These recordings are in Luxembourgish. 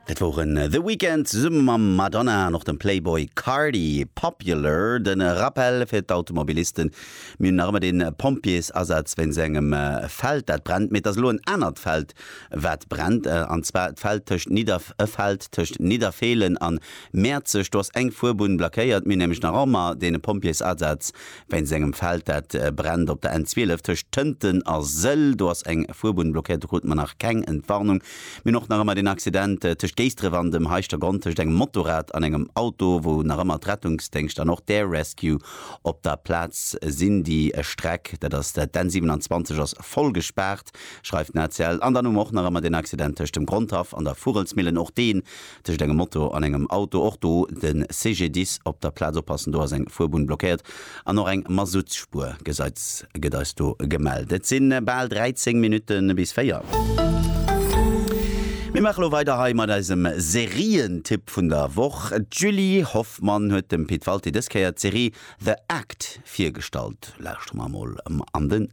Dat woren The Weeknd zesumme mam Madonna an och dem Playboy Carti. Popular, den Rappell fir d'Automobilisten, Mir hunn nach ëmmer den Pompjeesasaz wéinst engem Feld dat brennt, mee et ass elo en anert Feld wat brennt, an zwar d'Feld tëscht Nidderf e Feld tëscht Nidderfeelen an Mäerzeg. Do ass eng Fuerbunn blackéiert. Mir hunn nämlech nach ëmmer den Pompjeesasaz Wéinst engem Feld, dat brennt op der N12 tëscht Tënten a Sëll. Do ass eng Fuerbunn blockéiert. Do krute mer nach keng Entwarnung. Mir hunn och nach ëmmer deen Accident tëscht Géisdref an dem Heischtergronn tëscht engem Motorrad an engem Auto, wou nach ëmmer d'Rettungsdéngscht an och d'Air Rescue op der Plaz sinn. Déi Streck, dat ass d'N 27, ass voll gespaart, schreift den ACL. An dann hu mer och nach ëmmer deen Accident tëscht dem Grondhaff an der Vugelsmillen. Och dee Tëscht engem Moto an engem Auto, och do de CGDIS op der Plaz oppassen, do ass eng Fuerbunn blockéiert an och eng Mazoutsspuer gëtt eis do gemellt. Et si bal 13 Minutte bis 4. Mir maache lo weider hei mat eisem Serientipp vun der Woch. D'Julie Hoffmann huet dem Pit Walté dës Kéier d'Serie The Act virgestallt. Lauschtere mer emol an den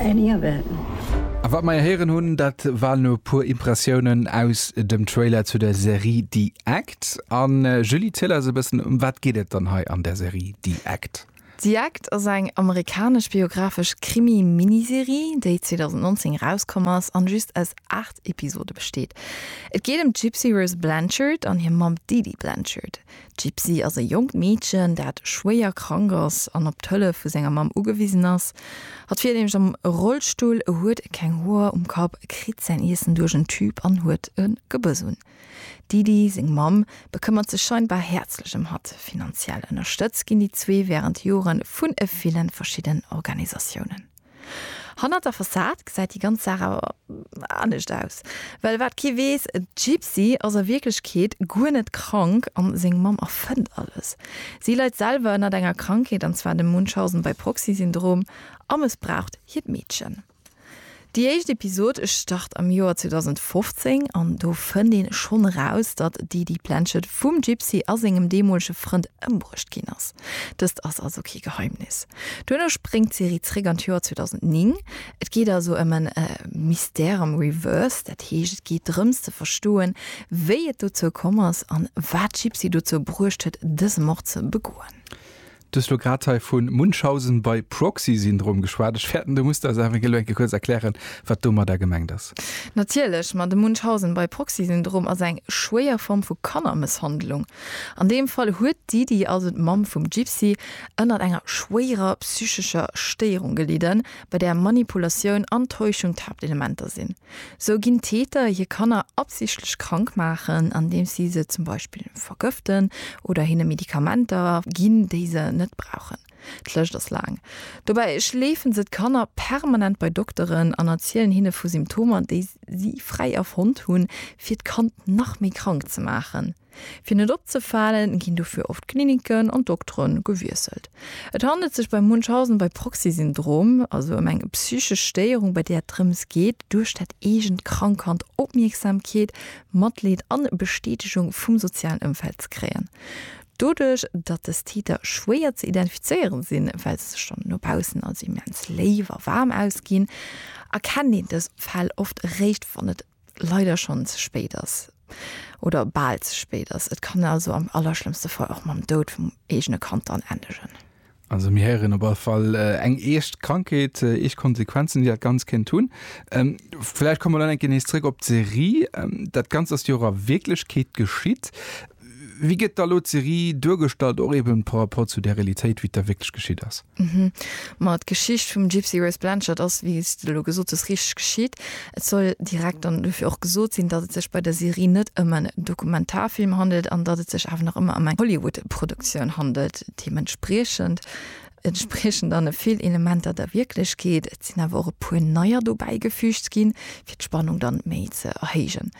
Any event. A wat mer héieren hunn, dat waren e puer Impressiounen aus dem Trailer zu der Serie The Act. A Julie, ziel eis e bëssen, ëm wat geet et dann hei an der Serie The Act? The Act ass eng amerikanesch biographesch Krimi-Miniserie, déi 2019 erauskomm ass an just aus 8 Episode besteet. Et geet ëm d'Gypsy Rose Blanchard an hir Mamm d'Edie Blanchard. D'Gypsy ass e jonkt Meedchen, dat schwéier krank ass an op d'Hëllef vu senger Mamm ugewisen ass. Hatt fiert nämlech am Rollstull, huet keng Hoer um Kapp, kritt säin Iessen duerch en Tüb an huet e Gebuss un. D'Didi, seng Mamm, bekëmmert sech scheinbar häerzlech ëm hatt. Finanziell ënnerstëtzt ginn déi zwee wärend Jore vun e ville verschiddenen Organisatiounen. Hannert der Fassad gesäit déi ganz Saach awer anescht aus. Well wat kee weess, d'Gypsy ass a Wierklechkeet guer net krank an seng Mamm erfënnt alles. Si leit selwer ënnert enger Krankheet, an zwar dem Munchausen-by-proxy-Syndrom, a mëssbraucht hiert Meedchen. Déi éischt Episod start am Joer 2015 an do fënnt ee schonn eraus, datt d'Edie Planchet vum Gypsy a sengem deemolege Frënd ëmbruecht ginn ass. Dëst ass also kee Geheimnis. Duerno spréngt d'Serie zréck an d'Joer 2009. Et geet also ëm en Mystère am Reverse, dat heescht et geet drëms ze verstoen, wéi et dozou komm ass an wat d'Gypsy dozou bruecht huet, dëse Mord ze begoen. Du hues elo grad hei vu Munchausen by proxy Syndrom geschwat. Ech fäerten, du muss eis awer elo eng Kéier kuerz erklären, wat domadder gemengt ass. Natierlech, ma de Munchausen by proxy Syndrom ass eng schwéier Form vu Kannermësshandlung. An deem Fall huet d'Didi, also d'Mamm vum Gypsy, ënnert enger schwéierer psychescher Stéierung gelidden, bei där Manipulatioun an Täuschung d'Haaptelementer sinn. Sou ginn Täter hir Kanner absichtlech krank maachen, andeems si se zum Beispill vergëften oder hinne Medikamenter ginn, déi se net brauchen. D'Lëscht ass laang. Dobäi schleefen se d'Kanner permanent bei Dokteren an erzielen hinne vu Symptomer, déi si fräi erfonnt hunn, fir d'Kand nach méi krank ze maachen. Fir net opzefalen, ginn dofir oft d'Kliniken an d'Doktere gewiesselt. Et handelt sech bei Munchausen bei Proxy-Syndrom also ëm eng psychesch Stéierung, bei där et drëms geet, duerch dat eegent krank Kand Opmierksamkeet, Matleed an Bestätegung vum sozialen Ëmfeld ze kréien. Doduerch, datt dës Täter schwéier ze identifizéiere sinn, well se sech dann no baussen als immens léif a waarm ausginn, erkennt een dës Fäll oft eréischt, wann et leider schonn ze spéit ass oder bal ze spéit ass. Et kann also am allerschlëmmste Fall och mam Doud vum eegene Kand dann endegen. Also mir héieren op all Fall eng eescht Krankheet, eescht Konsequenzen, déi dat Ganzt kéint hunn. Vläicht komme mer dann eng Kéier nees zréck op d'Serie. Dat Ganzt ass jo och a Wierklechkeet geschitt. Wéi gëtt da elo d'Serie duergestallt, och eben par rapport zu där Realitéit, wéi et da wierklech geschitt ass? Mhm. Ma d'Geschicht vum Gypsy Rose Blanchard ass, wéi s de elo gesot hues, richteg geschitt. Et soll direkt dann dofir och gesot sinn, datt et sech bei der Serie net ëm en Dokumentarfilm handelt an datt et sech awer nach ëmmer ëm eng Hollywood-Produktioun handelt. Deementspriechend entspriechen dann e vill Elementer der Wierklechkeet. Et sinn awer och e puer neier dobäigefüügt ginn, fir d'Spannung dann méi ze erhéijen.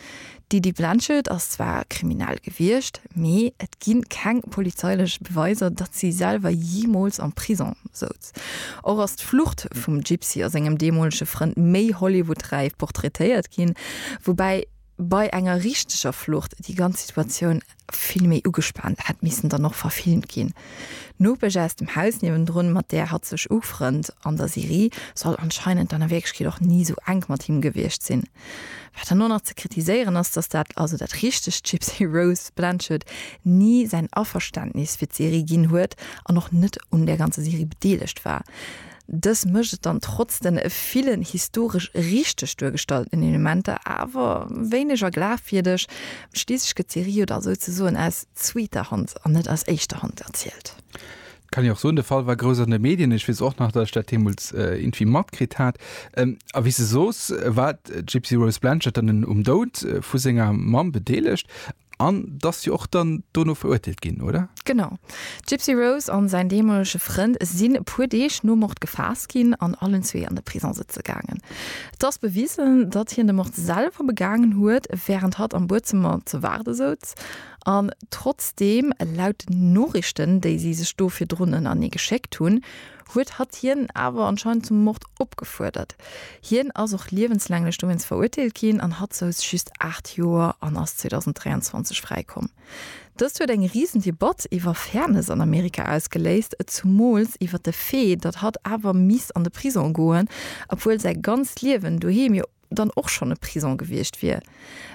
D'Lydie Blenchard ass zwar kriminell gewiescht, mee et gi keng polizeilech Beweiser, datt si selwer jeemools am Prisong souz. Och ass d'Flucht vum Gypsy a sengem deemolege Frënd méi Hollywood-räif portraitéiert ginn, woubäi bei enger richteger Flucht déi ganz Situatioun Vill méi ugespaant hätt missen dann och verfilmt ginn. D'Nopesch aus dem Haus niewendrun, mat där hatt sech ufrënnt an der Serie, soll anscheinend dann a Wierklechkeet och ni esou enk mat him gewiescht sinn. Wat dann och nach ze kritiséieren ass, dass dat, also dat richtegt Gypsy Rose Blanchard, ni säin Averständnis fir d'Serie ginn huet an och net un där ganzer Serie bedeelegt war. Dës mécht et dann trotz den villen historesch richteg duergestallten Elementer awer wéineger glafwierdeg. Schliisslech gëtt d'Serie jo da souzesoen aus zweeter Hand an net aus éischter Hand erzielt. Dat kann een och soen. De Fall war grouss an de Medien. Ech weess och nach, datt ech dat deemools irgendwie matkritt hat. A wéi s de soos, war d'Gypsy Rose Blanchard dann um Doud vu senger Mamm bedeelegt. An dass jo och dann dono verurteelt ginn, oder? Genau. Gypsy Rose an säin deemolege Frënd sinn e puer Deeg nom Mord gefaasst ginn an allen zwee an de Prison sëtze gaangen. Et ass bewisen, datt hien de Mord selwer begaangen huet, wärend hatt am Buedzëmmer ze waarde souz. An trotzdeem, laut den Noriichten, déi si sech do virdrun ënnerneegeschéckt hunn, huet hatt hien awer anscheinend zum Mord opgefuerdert. Hien ass och liewenslänglech dowéinst verurteelt ginn an hatt souz just 8 Joer an ass 2023 fräikomm. Dëst huet eng risen Debatt iwwer Fairness an Amerika ausgeléist, et zumools iwwer de Fait, datt hatt awer misst an de Prisong goen, obwuel säi ganzt Liewen doheem jo. dann och schonn e Prison gewiescht wier.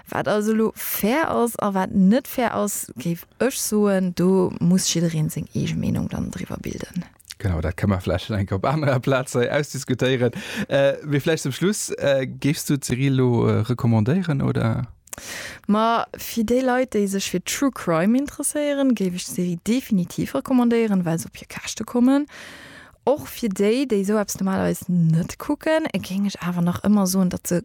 Wat also elo fair ass a wat net fair ass, géif ech soen, do muss jiddereen seng eege Meenung dann driwwer bilden. Genau, dat ka mer vläicht eng op anerer Plaz hei ausdiskutéieren. Mee vläicht zum Schluss, géifs du d'Serie elo recommandéieren, oder? Ma fir déi Leit, déi sech fir True Crime interesséieren, géif ech d'Serie definitiv recommandéieren, well se op hir Käschte kommen. Och fir déi, déi esou eppes normalerweis net kucken, géing ech awer nach ëmmer soen, datt se,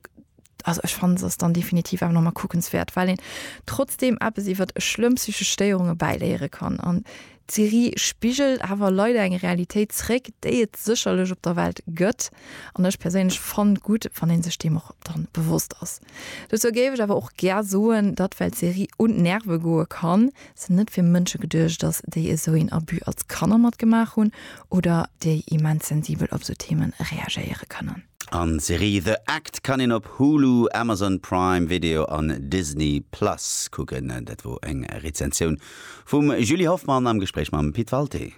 also ech fannen, se ass dann definitiv awer nach emol kuckenswäert, well een trotzdeem eppes iwwert schlëmm psychesch Stéierunge bäiléiere kann. An d'Serie spigelt awer leider eng Realitéit zréck, déi et sécherlech op der Welt gëtt, an ech perséinlech fannt gutt, wann ee sech deem och dann bewosst ass. Dozou géif ech awer och gär soen, datt well d'Serie un d'Nerve goe kann, sinn net fir Mënsche geduecht ass, déi esou een Abus als Kanner matgemaach hunn oder déi immens sensibel op esou Themen reagéiere kënnen. An d'Serie The Act kann een op Hulu, Amazon Prime Video an Disney Plus kucken. Dat wor eng Rezensioun vum Julie Hoffmann am Gespréich mam Pit Walté.